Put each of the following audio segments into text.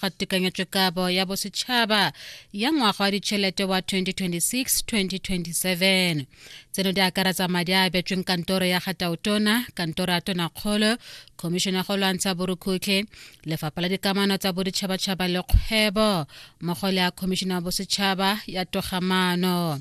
ga tekanyetsokabo ya bosetšhaba ya ngwaga wa ditšhelete wa 2026-2027 tseno di akaretsa madi a abetsweng kantoro ya ga taotona kantoro ya tonakgolo khomišene ya go lwantsha borukhutlhe lefapha la dikamano tsa boditšhabatšhaba le kgwebo mmogo le ya khomišene ya bosetšhaba ya togamano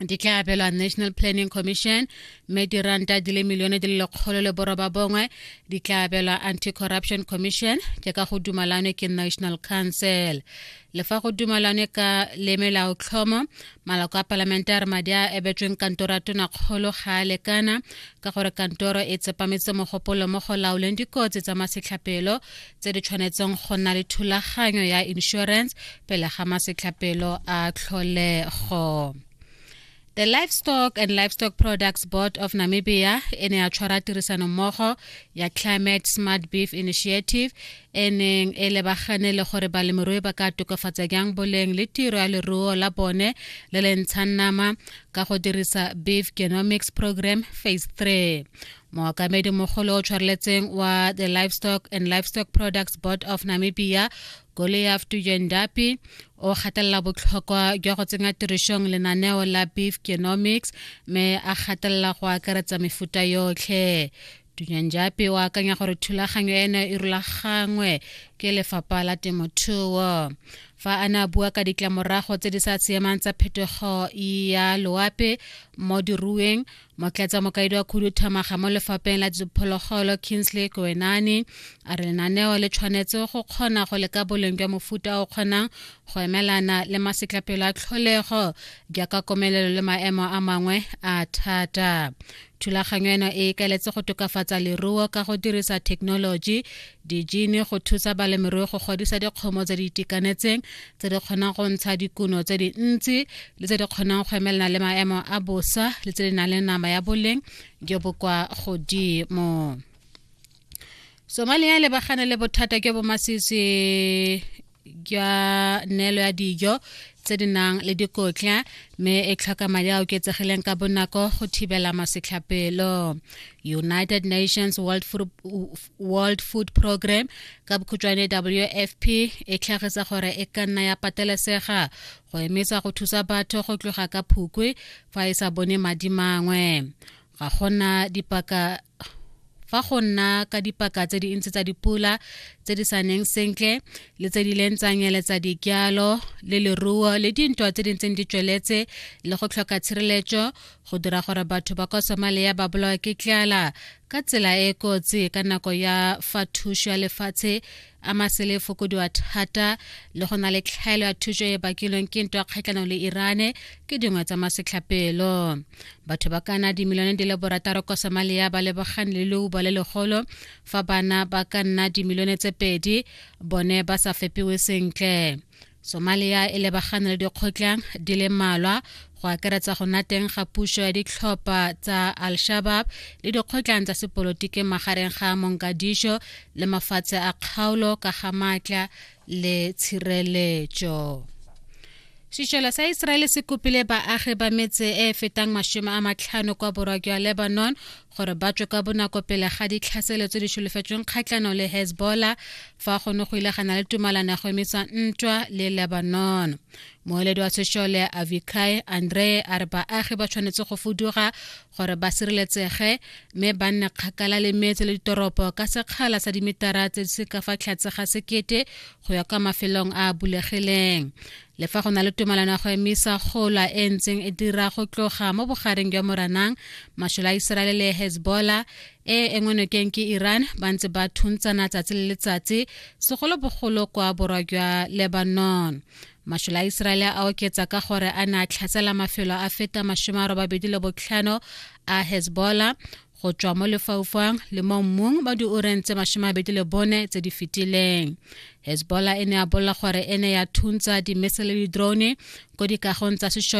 di tla abelwa national planning commission mme diranta di le milione di le lekgolo le boroba bongwe di tla abelwa anti-corruption commission ke ka go dumalane ke national council le fa go dumalane ka le melao tlhomo maloko a palamente a re madi a ebetsweng kantoro ya tonakgolo ga a lekana ka gore kantoro e tsepametse mogopolo mo go laoleng dikotsi tsa masetlhapelo tse di tshwanetseng go nna le thulaganyo ya insurance pele ga masetlhapelo a tlholego The Livestock and Livestock Products Board of Namibia e ne ya tshwara tirisano mmogo ya Climate Smart Beef Initiative e neng e lebagane le gore balemirui ba ka tokafatsa jang boleng le tiro ya leruo la bone le le ntshang nama ka go dirisa Beef Genomics Program Phase 3. mookamedi mogolo o tshwareletseng wa the livestock and livestock products board of namibia goliaf tujendapi o gatelela botlhokwa jwa go tsenya tirišong lenaneo la beef genomics mme a gatelela go akaretsa mefuta yotlhe tunyanjape o akanya gore thulaganyo eno e rulagangwe ke lefapha la temothuo fa a ne a bua ka ditlamorago tse di sa siamang tsa phetogo ya loape mo dirueng mokletsa mokaedi wa khuduthamaga mo lefapeng la diphologolo kingsley koenane a re lenaneo le tshwanetse go kgona go leka boleng jwa mofuta o kgonang go emelana le masetlapelo a tlholego jaaka komelelo le maemo a mangwe a thata thulaganyo eno e ikaletse go tokafatsa leruo ka go dirisa thekenoloji dijine go thusa balemirui go godisa dikgomo tse di itekanetseng tse di kgonang go ntsha dikuno tse dintsi le tse di kgonang go emelana le maemo a bosa le tse di nang le nama ya boleng jo bo kwa godimo somalia e lebagane le bothata jo bo masisi jwa neelo ya dijo tse di nang le dikotla mme e tlhoka madi a oketsegileng ka bonako go thibela masetlhapelo united nations world food, world food program ka bokhutšwane wfp e tlhagisa gore e ka nna ya patelesega go emisa go thusa batho go tloga ka phukwe fa e sa bone madi mangwe ga gona dipaka fa go nna ka dipaka tse di ntsi tsa dipula tse di sa neng sentle le tse di leng tsa nyeletsa dijalo le leruo le dintwa tse di ntseng di tsweletse le go tlhoka tshireletso go dira gore batho ba kwa somalia ba bolawa ke tlala ka tsela e kotsi ka nako ya fa thuso ya lefatshe a masele fokodiwa thata le go na le tlhaelo ya thuso e bakilweng ke ntwa kgatlhanong le irane ke dingwe tsa masetlhapelo batho ba kana dimilione di le borataro kwa somalia ba lebogane le leuba le legolo fa bana ba ka nna dimilione tse pedi bone ba sa fepiwe sentle somalia e lebagane le dikgotlang di le mmalwa go akaretsa go nna teng ga puso ya ditlhopha tsa al-shabab le dikgotlang tsa sepolotiki magareng ga monkadiso le mafatshe a kgaolo ka ga maatla le tshireletso sešola sa iseraele se kopile baagi ba metse e fetang masome a matlhano kwa borwa jwa lebanon gore ba tswe ka bonako pele ga ditlhaselo tse di solofetsweng kgatlhanong le hezbollah fa gone go ile gana le tumalano ya go emisa ntwa le lebanon moeledi wa sešole avikai andre a re baagi ba tshwanetse go fuduga gore ba sireletsege mme ba nne kgakala le metse le ditoropo ka sekgala sa dimetara tse di se ka fa tlhatse ga sekete go ya kwa mafelong a a bulegileng le fa go na le tumalano ya go emisa gola e ntseng e dira go tloga mo bogareng jwa moranang masole a iseraele le hezbollah e engwe nokeng ke iran ba ntse ba thuntsana tsatsi le letsatsi segolobogolo kwa borwa jwa lebanon masole a iseraele a oketsa ka gore a ne a tlhatsela mafelo a feta masome a robabedi le botlhano a hezbollah go tswa mo lefaufang le mo mmung ba dioreng tse masome a bedi le bone tse di fetileng hezbollah e ne ya bolela gore e ne ya thuntsa dimese le di-drone ko dikagong tsa sešole